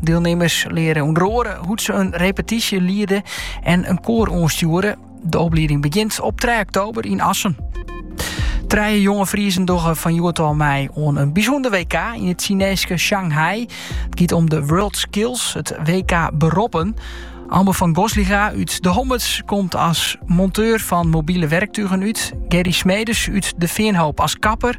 Dielnimmers leare ûnder oare hoe't se in repetysje liede en in koar oanstjoere. De oplieding begjint op 3 oktober yn Assen. Trije jonge Friezen dogge fan hjoed ôf mei oan in bysûnder WK yn it Sineeske Shanghai. It giet om de World Skills, it WK Beroppen. Amber van Gosliga út De Hommerts komt as monteur fan mobile wurktugen út. Gerry Smedes út De Feanhoop as kapper.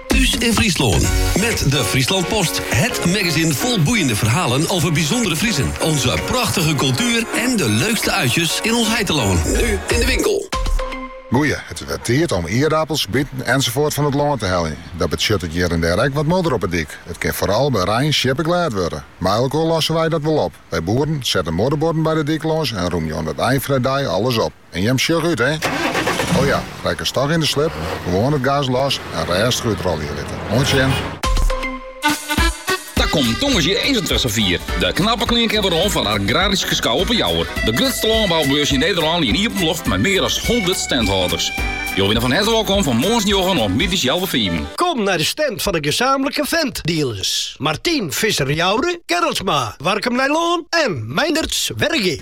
Thuis in Friesland. Met de Friesland Post. Het magazine vol boeiende verhalen over bijzondere Friesen. Onze prachtige cultuur en de leukste uitjes in ons heiteloon. Nu in de winkel. Goeie, het is weer tijd om ierdapels, bieten enzovoort van het land te hellen. Dat betsjut het hier en der ek wat modder op de dik. Het kin vooral bij rein sjippe glêd worden. Mei elkoar lossen wij dat wel op. Wij boeren zetten modderborden bij de dik lâns en rûmjen oan it ein van de dei alles op. En jim sjoch út, hè? O ja, rekkest dochs yn de slip, gewoan it gas los en rêstich útrôlje litte. Oant sjen! Kom tongersdei 21 4. De knappe klinken wer oan foar de Agrarische Schouw op 'e Jouwer. De grutste lânboubeurs yn Nederlân yn iepen loft mei mear as 100 standhâlders. Jo binne fan herte wolkom fan moarns njoggen oant middeis healwei fiven. Kom nei de stand fan de gesamentlike Fendt-dealers. Martin Visser Jouwer, Gerlsma, Warkum Nijlân en Meinderts Wergea.